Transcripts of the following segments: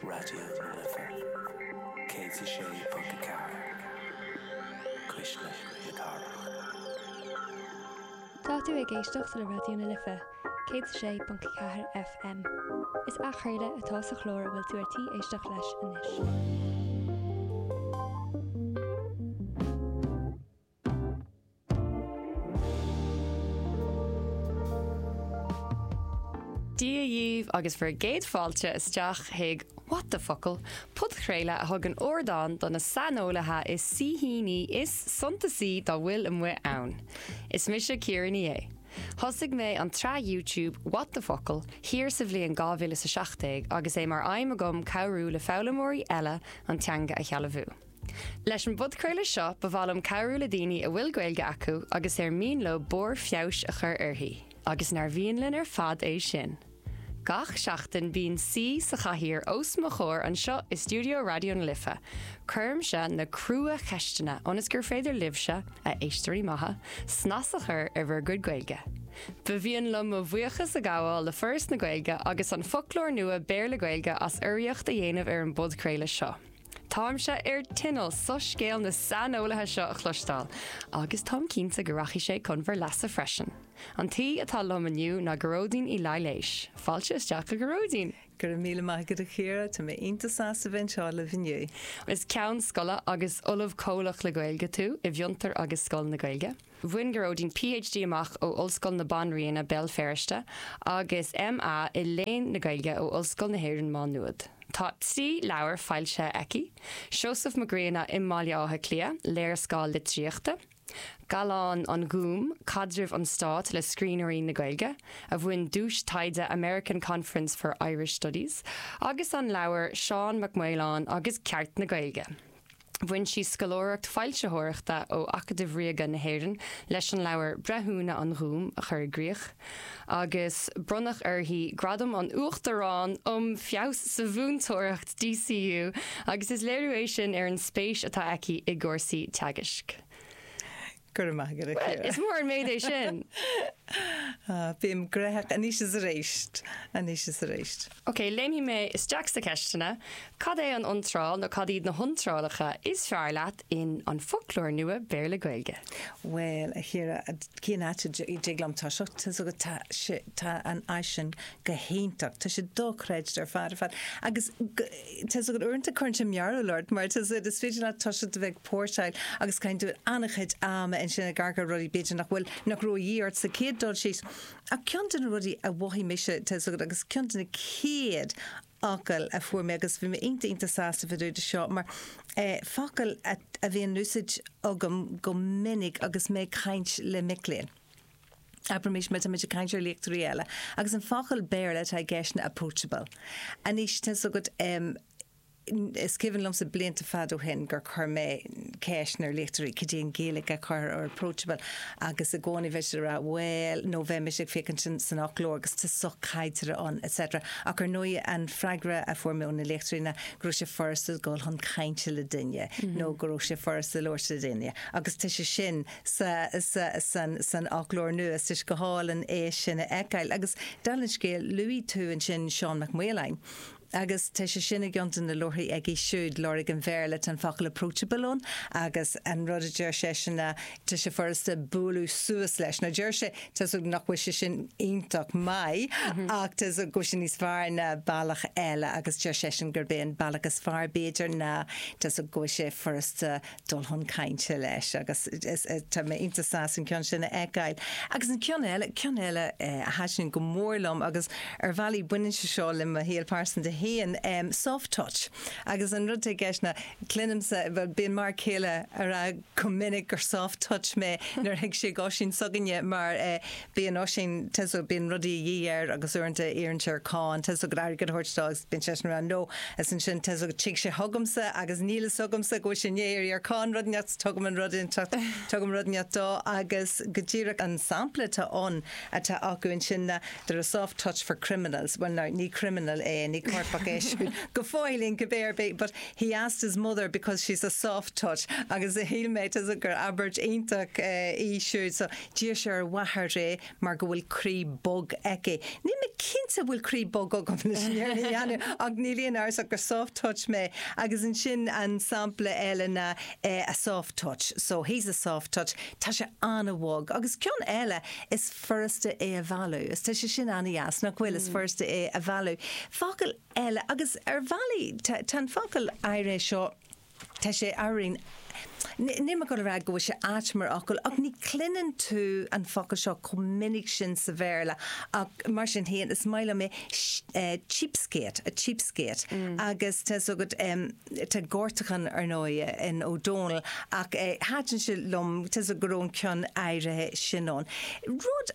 Raidió na Life 106.4 Cuisle na Cathrach. Tá tú ag éisteacht le Raidió na Life 106.4 FM. Is athchraoladh atá sa chlár a bhfuil tú ar tí éisteacht leis anois. Dia dhíbh agus bhur gcéad fáilte isteach chuig What the Focal, podchraoladh a thugann ardán do na saineolaithe is saoithíní is suntasaí dá bhfuil amuigh ann. Is mise Ciara Ní É. Thosaigh mé an tsraith YouTube What the Focal thiar sa bhliain 2017 agus é mar aidhm agam cabhrú le foghlaimeoirí eile an teanga a shealbhú. Leis an bpodchraoladh seo, ba mhaith liom cabhrú le daoine a bhfuil Gaeilge acu agus ar mian leo barr feabhais a chur uirthi, agus nár mhian linn ar fad é sin! Gach seachtain, bíonn saoi sa chathaoir os mo chomhair anseo i stiúideo Raidió na Life. Cuirimse na crua-cheisteanna ionas gur féidir libhse, a éisteoirí maithe, snas a chur ar bhur gcuid Gaeilge. Ba mhian liom mo bhuíochas a ghabháil le Foras na Gaeilge agus An Foclóir Nua Béarla-Gaeilge as urraíocht a dhéanamh ar an bpodchraoladh seo. Táimse ar tinneall soiscéal na saineolaithe seo a chloisteáil, agus táim cinnte go rachaidh sé chun bhur leasa freisin. An t-aoi atá liom inniu ná Gearóidín Uí Laighléis. Fáilte isteach, a Ghearóidín! Go raibh míle maith agat, a Chiara. Tá mé iontach sásta bheith anseo libh inniu. Is Ceann Scoile agus Ollamh Comhlach le Gaeilge tú i bhFiontar agus Scoil na Gaeilge. Bhain Gearóidín PhD amach ó Ollscoil na Banríona, Béal Feirste, agus MA i Léann na Gaeilge ó Ollscoil na hÉireann Má Nuad. Tá trí leabhar foilsithe aici, Seosamh Mac Grianna i mBaile Átha Cliath, léarscáil litríochta, Gallán an Ghúim, caidreamh an stáit le scríbhneoirí na Gaeilge, a bhain duais taighde American Conference for Irish Studies, agus an leabhar Seán Mac Maoláin agus Ceart na Gaeilge. Bhain sí scoláireacht foilsitheoireachta ó Acadamh Ríoga na hÉireann leis an leabhar Breithiúna an Ghúim a chur i gcrích, agus bronnadh uirthi Gradam an Uachtaráin um Feabhas sa Mhúinteoireacht, DCU, agus is léiriú é sin ar an spéis atá aici i gcúrsaí teagaisc. Go raibh maith agat, a Chiara. Is mór an méid é sin. Bím gnóthach. Anois is arís. Anois is arís. Ok, léimfidh mé isteach sna ceisteanna. Cad é an iontráil nó cad iad na hiontrálacha is fearr leat in An Foclóir Nua Béarla-Gaeilge? Bhuel, a Chiara, cén áit a dtig liom toiseacht? Tá a fhios agat tá sé, tá an áis sin go hiontach. Tá sé dochreidte ar fad ar fad. Agus Tá's agat uaireanta cuireann sé mearbhall ort mar tá's agat is féidir leat toiseacht a bheith ag póirseáil agus caitheann tú an-chuid ama ansin ag amharc ar rudaí b'fhéidir nach bhfuil nach raibh a dhíth ort sa chéad dul síos. Ach ceann de na rudaí a mhothaigh mise, tá's agat agus ceann de na chéad fhocail a fuair mé agus bhí mé iontach iontach sásta fá dtaobh de seo mar focal a bhíonn in úsáid agam go minic agus mé ag caint le mic léinn. Abraimis má táimid ag caint ar léachtóirí eile agus an focal Béarla atá i gceist ná approachable. Anois, tá fhios agat, is cuimhin liomsa blianta fada ó shin gur chuir mé ceist ar léachtóirí cad é an Ghaeilge a chuirthear ar approachable agus i gcónaí bheadh siad ag rá bhuel nó bheadh mise ag féachaint san fhoclóir agus tá sochaideartha ann etc. Ach ar ndóigh an freagra a fuair mé ó na léachtóirí ná go raibh sé furasta dul chun cainte le duine nó go raibh sé furasta labhairt le duine agus tá sé sin sa, sa, san, san fhoclóir nua. Tá sé go hálainn é sin a fheiceáil. Agus dála an scéil, luaigh tú ansin Seán Mac Maoláin. Agus tá sé sin i gceann de na leabharthaí aige siúd, Lorg an Bhéarla. Tá an focal approachable ann agus an rud a deir seisean ná tá sé furasta bualadh suas leis. Now deir sé, tá's agat nach bhfuil sé sin iontach maith ach tá's agat go bhfuil sé níos fearr ná bealach eile agus deir seisean gurb é an bealach is fearr b'fhéidir ná tá's agat go bhfuil sé furasta dul chun cainte leis agus tá mé iontach sásta an ceann sin a fheiceáil. Agus an ceann eile, ceann eile a thaitin go mór liom agus ar bhealaí baineann sé seo le mo shaol phearsanta féin, soft touch. Agus an rud atá i gceist ná cluinimse, bhuel bíonn m'fhear céile ag rá go minic gur soft touch mé nuair a thig sé go dtí Oisín s'againne mar Bíonn Oisín, tá's agat, bíonn rudaí a dhíth air agus uaireanta iarrann sé ar Chiarán, tá's agat, an t-airgead a thabhairt dó agus bíonn seisean ann leo. Is ansin, tá's agat, a thig sé chugamsa agus níl a fhios agamsa go bhfuil sé amuigh, ar iarr Ciarán rud inteacht agus tugaim an rud inteacht, tugaim rud inteacht dó agus go díreach an sampla atá ann, atá acu ansin ná, they're a soft touch for criminals, bhuel ná, ní criminal é, ní coirpeach Oisín go fóill cibé ar bith but he asked his mother because she's a soft touch agus shíl mé, tá's agat, gur abairt iontach í siúd so, D'iarr sé ar a mháthair é mar go bhfuil croí bog aici. Níl mé cinnte an bhfuil croí bog agam anois, déanaim, ach níl aon amhras ach gur soft touch mé. Agus ansin an sampla eile ná eh a soft touch, so he's a soft touch, tá sé an-bhog. Agus ceann eile, is furasta é a mhealladh, is tá sé sin an-deas, nach bhfuil, is furasta é a mhealladh. Focal eile, agus ar bhealaí tá an focal áirithe seo, Tá sé aríst. Níl mé ag rá go bhfuil sé ait mar fhocal, ach ní chluineann tú an focal seo chomh minic sin sa Bhéarla, ach mar sin féin, is maith liom é, cheapskate, a cheapskate. Agus tá's agat, tá gortachan, ar ndóigh, in Ó Dónaill, ach thaitin sé liom tá's agat go raibh an ceann áirithe sin ann. Rud.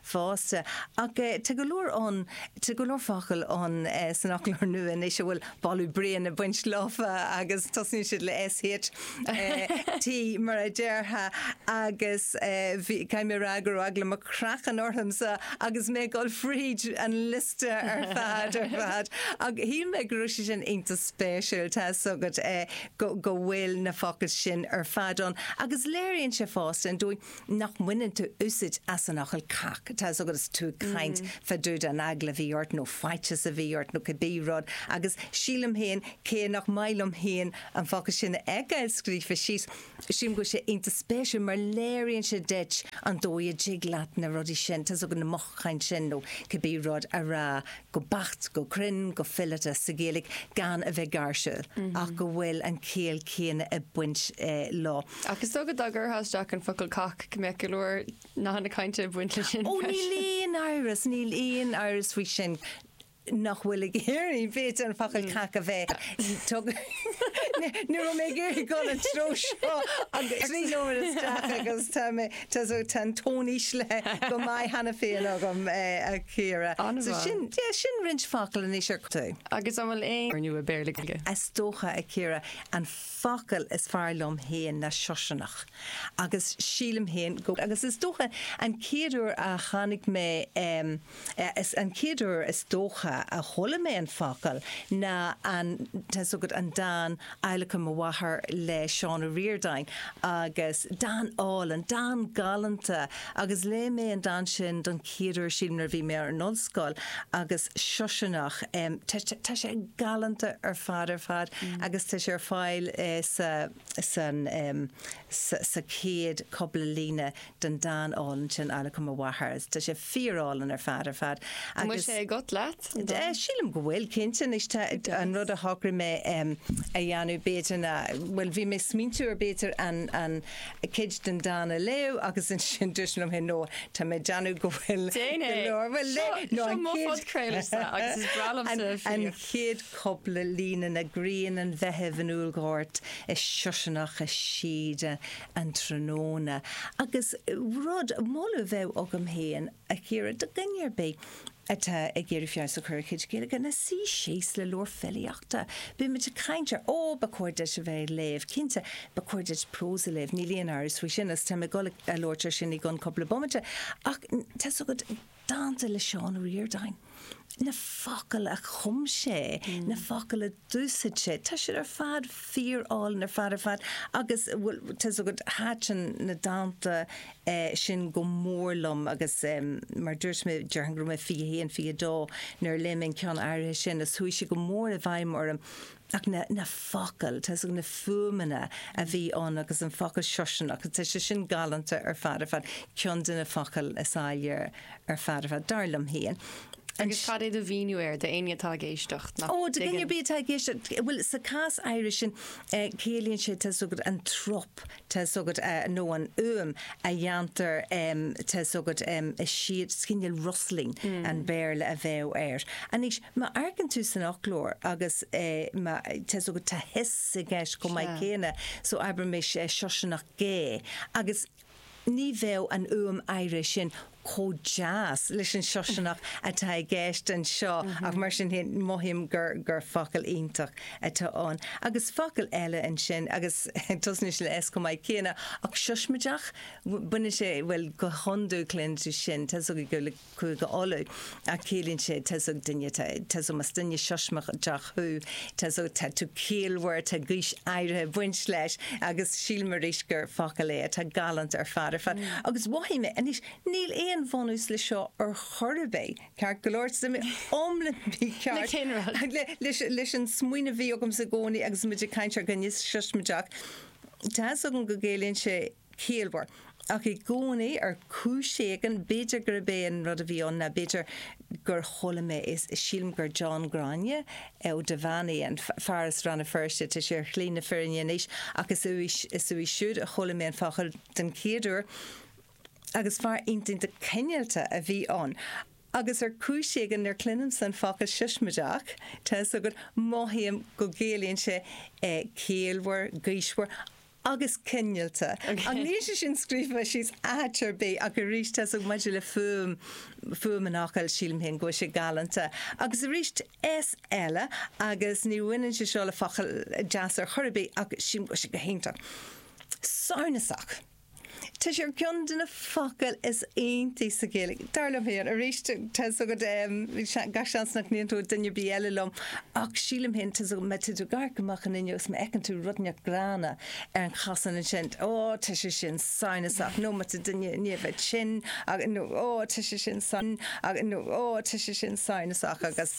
fosta. Ach tá go leor ann, tá go leor focal ann san Fhoclóir Nua anois a bhfuil baladh bréan ag baint leofa agus tosnaíonn siad le SH, T mar a déarfá agus bhí, caithfidh mé a rá go raibh eagla mo chraicinn ormsa agus mé ag dul fríd an liosta ar fad, ar fad. Ach shíl mé go raibh sé sin iontach spéisiúil, tá 'fhios agat, go bhfuil na focail sin ar fad ann agus léiríonn sé fosta an dóigh, nach mbaineann tú úsaid as an fhocal cac, tá 'fhios agat, is tú ag caint fá dtaobh den eagla a bhí ort nó faitios a bhí ort nó cibé rud agus sílim féin cé nach maith liom féin an focal sin a fheiceáil scríofa síos, sílim go bhfuil sé iontach spéisiúil mar léiríonn sé duit an dóigh a dtig leat na rudaí sin, tá 'fhios agat, na mothúcháin sin nó cibé rud a rá go beacht, go cruinn, go fileata sa Ghaeilge gan a bheith gáirsiúil ach go bhfuil an chiall chéanna ag baint leo. Ach is dócha dá gcuirfeá isteach an focal cac go mbeadh go leor nathanna cainte ag baint leis sin Ó, níl freisin. aon amhras, níl aon amhras faoi sin nach bhfuil ag iarraidh, b'fhéidir, an focal cac a bheith tugtha Ní raibh mé ag iarraidh dul an treo seo agus trí nóiméad isteach agus tá mé, tá, so, tá an tón íslithe go maith cheana féin agam, a Chiara. So An-mhaith. sin, yeah, sin roinnt focal anois ar. Agus an bhfuil aon. Ar ndóigh, Béarla, Gaeilge. Is dócha, a Chiara, an. focal is fearr liom féin ná siosarnach agus sílim féin go agus is dócha an chéad uair a tháinig mé an chéad uair is dócha a chuala mé an focal ná an tá 'fhios agat an dán Adhlacadh Mo Mháthar le Seán Ó Ríordáin agus dán álainn, dán galánta. Agus léigh mé an dán sin don chéad uair sílim nuair a bhí mé ar an ollscoil agus siosarnach em tá sé tá sé galánta ar fad ar fad agus tá sé ar fáil eh sa san em sa sa chéad cúpla líne den dán álainn sin Adhlacadh mo Mháthar is tá sé fíorálainn ar fad ar fad Tá muid agus sé agat leat an dán. Eh, sílim go bhfuil cinnte anois tá an rud a shocraigh mé em a dhéanamh b'fhéidir ná bhuel bhí mé ag smaointiú ar b'fhéidir an an cuid den dán a léamh agus ansin dúirt mé liom féin, 'No, tá mé ag déanamh go bhfuil go leor, bhuel, no, an chéad cúpla líne, ná grian an Mheithimh in úllghort is siosarnach i síoda an tráthnóna. Agus rud, moladh a bheadh agam féin, a Chiara do dhuine ar bith atá ag iarraidh feabhas a chur ar a chuid Gaeilge, ná suí síos le leabhar filíochta. Beimid ag caint ar, ó, ba chóir duit a bheith ag léamh, cinnte, ba chóir duit prós a léamh, níl aon amhras faoi sin, agus táim ag dul a labhairt air sin i gcionn cúpla bomaite, ach tá's agat, dánta le Seán Ó Ríordáin. na focail a chum sé, na focail a d'úsaid sé, tá siad ar fad fíor-álainn ar fad ar fad agus bhuel, tá's agat, thaitin na dánta sin go mór liom agus mar dúirt mé, déarfainn go raibh mé 21, 22 nuair a léigh mé an ceann áirithe sin agus chuaigh sé go mór i bhfeidhm orm. ach na focail, tá's agat, na fuaimeanna a bhí ann agus an focal siosarnach, tá sé sin galánta ar fad ar fad, ceann de na focail is áille ar fad ar fad, dar liom féin. Agus cad é do mhíniú air d'éinne atá ag éisteacht nach dtuigeann? Ó, do dhuine ar bith atá ag éisteacht, bhuel, sa chás áirithe sin, ciallaíonn sé, tá's agat, an trup, tá's agat nó an fhuaim a dhéantar tá's agat is dóigh gur cineál rustling an Bhéarla a bheadh air. Anois, má amharcann tú san fhoclóir agus tá's agat tá hiss i gceist chomh maith céanna so abraimis siosarnach gé agus ní bheadh an fhuaim áirithe sin. chomh deas leis an Siosarnach atá i gceist anseo ach mar sin féin mothaím gur gur focal iontach atá ann. Agus focal eile ansin agus tosnaíonn sé le S chomh maith céanna ach siosmaideach, baineann sé, bhuel go hiondúil cluineann tú sin, tá 's agat gur le Cúige Uladh Ach ciallaíonn sé, tá's agat duine, tá, tá's agat más duine siosmaideach thú, tá's agat, tá tú ciallmhar, tá gaois áirithe ag baint leis agus sílim arís gur focal é atá galánta ar fad, ar fad. Agus mhothaigh mé, anois, níl aon bhunús le seo ar chor ar bith, ceart go leor, tá mé iomlán mícheart. Le cén rud? Ach le, leis, leis an smaoineamh a bhí agamsa i gcónaí agus muid ag caint ar dhuine siosmaideach, tá's agam go gciallaíonn sé, ciallmhar. Ach i gcónaí, ar chúis éigin, b'fhéidir gurb é an rud a bhí ann ná, b'fhéidir gur chuala mé é, sílim gur John Ghráinne Ó Duibheannaigh, an fear as Rann na Feirste, tá sé ar shlí na firinne anois, ach is uaidh, is uaidh siúd a chuala mé an focal den chéad uair. Agus fear iontach cineálta a bhí ann. Agus ar chúis éigin, nuair a chluinimse an focal siosmaideach, tá 'fhios agat, mothaím go gciallaíonn sé ciallmhar, gaoismhear. agus cineálta. Níl sé sin scríofa síos áit ar bith, ach arís, tá's agat, maidir le fuaim, fuaim an fhocail, sílim féin go bhfuil sé galánta. Agus arís, S eile, agus ní bhaineann sé seo le focail deasa ar chor ar bith, ach sílim go bhfuil sé go hiontach. Samhnasach. Tá sé ar cheann de na focail is iontaí sa Ghaeilge, dar liom féin. Arís, tá's agat, gach seans nach n-aontóidh duine ar bith eile liom, ach sílim féin, tá's agat, má tá tú ag amharc amach an fhuinneog is má fheiceann tú rud inteacht gránna ar an chosán ansin, ó, tá sé sin samhnasach, nó má tá duine i ndiaidh bheith tinn, nó, ó, tá sé sin samhnasach, agus.